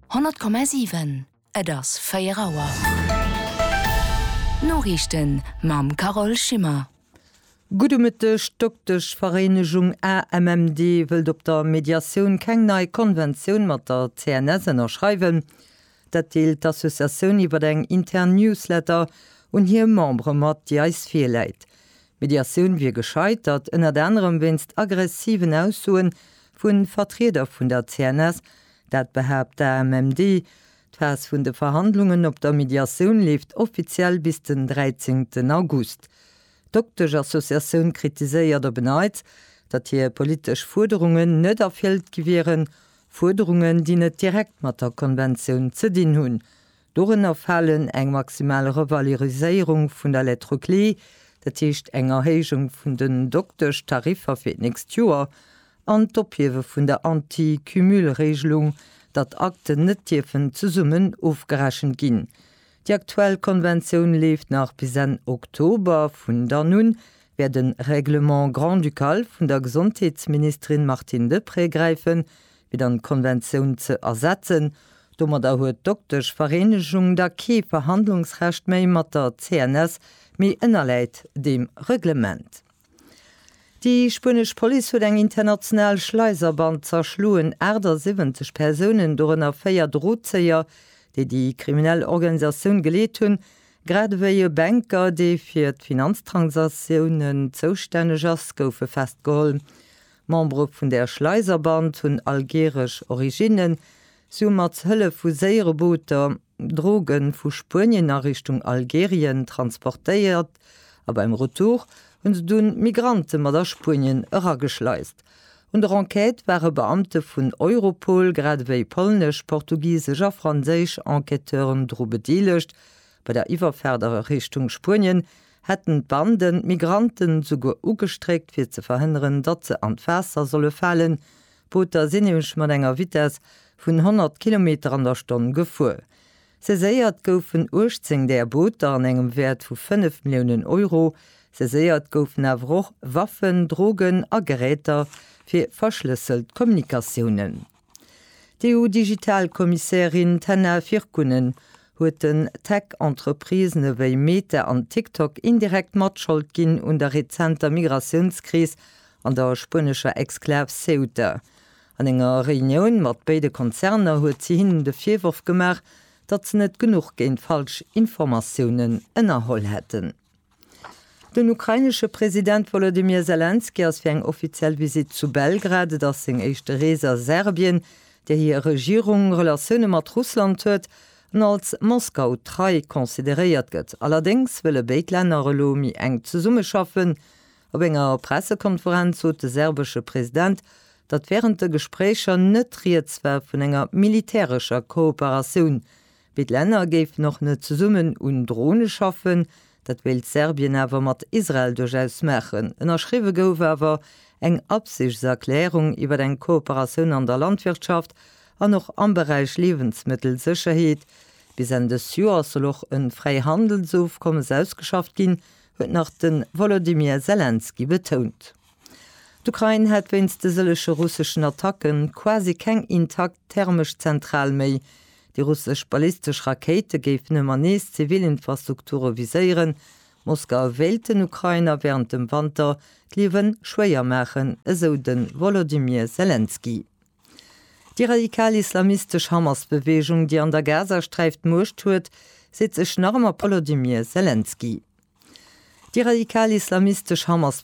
100,7 Et ass 4 Auer. D'Noriichten mam Carole Schimmer. Gudde Mëtteg, D'Dokteschvereenegung AMMD wëllt op der Mediatioun keng nei Konventioun mat der CNS ënnerschreiwen. Dat deelt d'Associatioun iwwer eng intern Newsletter un hir Membere mat, déi eis virläit. D'Mediatioun wier gescheitert, ënnert anerem wéinst aggressiven Aussoe vu Vertrieder vun der CNS, dat behaapt d'AMMD. D'Phas vun de Verhandlungen op der Mediatioun leeft offiziell bis den 13 August. D'Dokteschassociatioun kritiséiert op en Neits, datt hir politesch Fuerderungen net erfëllt gi wieren, Fuerderungen, déi net direkt mat der Konventioun ze dinn hunn. Dorënner falen eng maximal Revaloriséierung vun der Lettre clé, dat heescht eng Erhéijung vun den Dokteschtariffer fir d'nächst Joer, an d'Ophiewe vun der Anti-Cumul-Regelung, datt Akten net dierfen zesummen ofgerechent ginn. Déi aktuell Konventioun leeft nach bis Enn Oktober. Vun dann un wäert e Règlement grand-ducal vun der Gesondheetsministerin Martine Deprez gräifen, fir dann d'Konventioun ze ersetzen. Domadder huet d'Dokteschvereenegung da kee Verhandlungsrecht méi mat der CNS, mee ënnerläit deem Reglement. Déi spuenesch Police huet eng international Schleiserband zerschloen. 78 Persounen, dorënner véier Drozéier, déi déi kriminell Organisatioun geleet hunn, grad ewéi e Banker, dee fir d'Finanztransaktiounen zoustänneg ass, goufe festgeholl. D'Membere vun der Schleiser Band hunn algeresch Originnen. Si hu mat Hëllef vu séiere Booter Droge vu Spuenien a Richtung Algerien transportéiert a beim Retour hu se dunn d'Migrante mat a Spuenien erageschleist. Un der Enquête ware Beamte vun Europol, grad ewéi polnesch, portugisesch a franséisch Enquêteuren dru bedeelegt. Bei der Iwwerfaart a Richtung Spuenien hätten d'Banden d'Migranten esouguer ugestréckt fir ze verhënneren, datt se an d'Waasser solle falen, d'Booter sinn nämlech mat enger Vitess vun 100 Kilometer an der Stonn gefuer. Saiséiert goufen 18 där Booter an engem Wäert vu 5 Milliounen Euro. Saiséiert goufen awer och Waffen, Drogen a Geräter fir verschlësselt Kommunikatiounen. D'EU-Digital-Kommissärin Tenna Virkkunen huet den Tech-Entreprisen ewéi Meta an TikTok indirekt Matschold ginn un der rezenter Migratiounskris an der spuenescher Exklav Ceuta. An enger Reunioun mat béide Konzerner huet si hinnen de Virworf gemaach, datt se net genuch géint falsch Informatiounen ënnerholl hätten. Den ukrainesche President Wolodymyr Selenskyj ass fir eng offiziell Visitt zu Belgrad. Et ass seng éischte Rees a Serbien, där hir Regierung Relatioune mat Russland huet an als Moskau trei consideréiert gëtt. Allerdéngs wëlle béid Länner elo méi enk zesummeschaffen. Op enger Pressekonferenz sot de serbesche President, datt wärend de Gespréicher net rieds war vun enger militärescher Kooperatioun Béid Länner géifen och net zesummen un Drone schaffen. Dat wéilt Serbien awer mat Israel duerchaus maachen. Ënnerschriwwe gouf awer eng Absichtserklärung iwwer eng Kooperatioun an der Landwirtschaft an och am Beräich Liewensmëttelsécherheet. Bis Enn dës Joers soll och e Fräihandelsofkommes ausgeschafft ginn, huet nach de Wolodymyr Selenskyj betount. D'Ukrain hätt wéinst de sëllege russeschen Attacke quasi keng intakt thermesch Zentral méi. Déi russesch ballistesch Rakéite géifen ëmmer nees zivil Infrastrukture viséieren. Moskau wéilt den Ukrainer wärend dem Wanter d'Liewe schwéier maachen, esou de Wolodymyr Selenskyj. Déi radikal islamistesch Hamas-Beweegung, déi an der Gazasträif d'Muecht huet, seet sech nach ëmmer Wolodymyr Selenskyj. Déi radikal islamistesch Hamas.